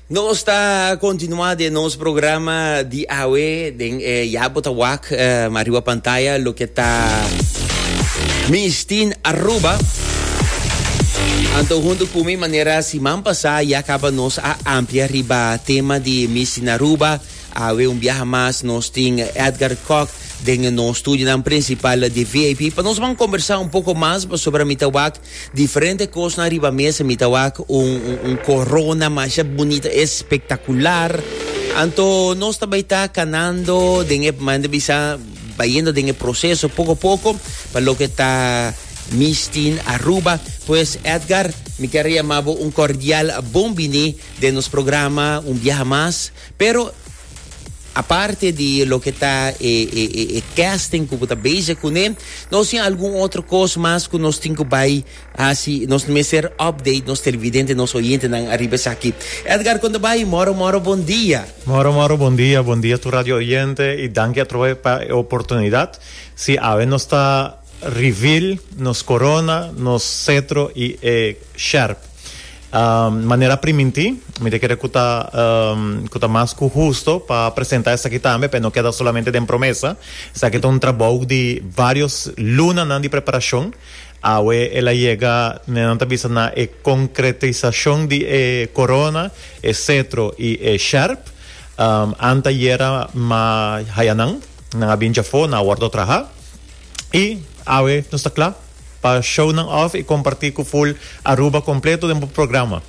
Nos ta continua de nos programa di awe den eh, ya bota wak eh, mariwa pantaya lo que ta Mistin Aruba. Anto junto con mi manera siman pasada ya acaba nos a amplia riba tema di Miss Naruba. Awe un viaje más nos tin Edgar Koch den nos studionan principal di VIP. Pa nos van conversar un poco más sobre mitawak Diferente cosnan riba mesa mi ta wak un un corona masha bunita espectacular. Anto nos ta bay ta canando den e manda bisa bayendo den e proceso poco poco pa loke ta Miss Teen Aruba. Pues Edgar, mi quiero llamabo un cordial bon bini den nos programa un biaha mas. Pero aparte di loke ta e, e, e, e casting ku bo ta bezig kuné, nos tin algun otro kos mas ku nos tin ku bai hasi, nos mester update nos televidente, nos oyentenan ariba esaki. Edgar Kondabayi, moro moro bon dia. Moro moro bon dia, bon dia tur radio oyente i danki atrobe pa e oportunidat. Si, awe nos ta. Reveal nos corona, nos cetro y e sherp. Manera primintí, mi ta kere cu ta cu ta mas cu husto pa presenta esaki tambe pa e no keda solamente den promesa. Esaki ta un trabou di varios lunanan di preparacion. Awe el a yega, manera nan ta bisa, na e concretisacion di e corona, e cetro y e sherp. Anta yera ma hayanan. Nan a bin dja for, nan a wordo traha. Y awe nos ta cla pa show nan off y comparti cu full Aruba completo den bo programa.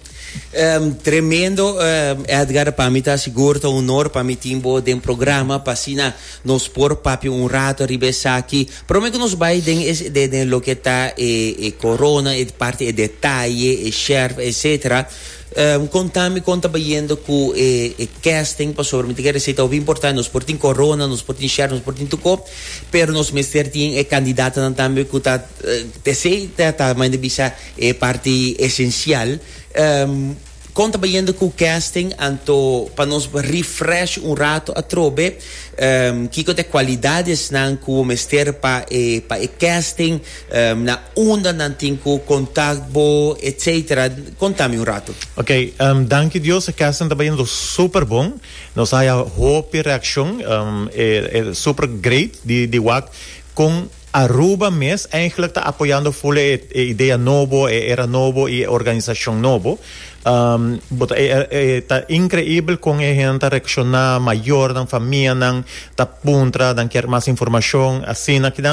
Ehm, tremendo Edgar, pa mi ta sigur ta honor pa mi tin bo den programa pa asina nos por papia un rato riba esaki. Prome cu nos bay den e den loke ta e e corona, e parti e detaye, e sherf, etcetera. Um contami con ta bayendo cu e e casting pasobra mi ta kere si ta hopi importante nos por tin corona nos por tin share nos por tin tuco pero nos mester tin e candidatonan tambe cu ta pesey ta ta mainda bisa e parti esencial um con ta bayendo cu casting anto pa nos refresh un rato atrobe um kico ta e cualidadesnan cu bo mester pa e pa e casting. Na unda nan tin cu contact bo etc. Conta mi un rato. Ok, danki Dios e kesten ta bayendo super bon. Nos a haya hopi reaccion. E super great di wak con Aruba mes eigenlijk ta apoyando full e idea nobo, e era nobo y e organisacion nobo. E ta increibel con e hende ta reacciona, mayornan, famianan ta puntra, nan kier mas informacion, asina.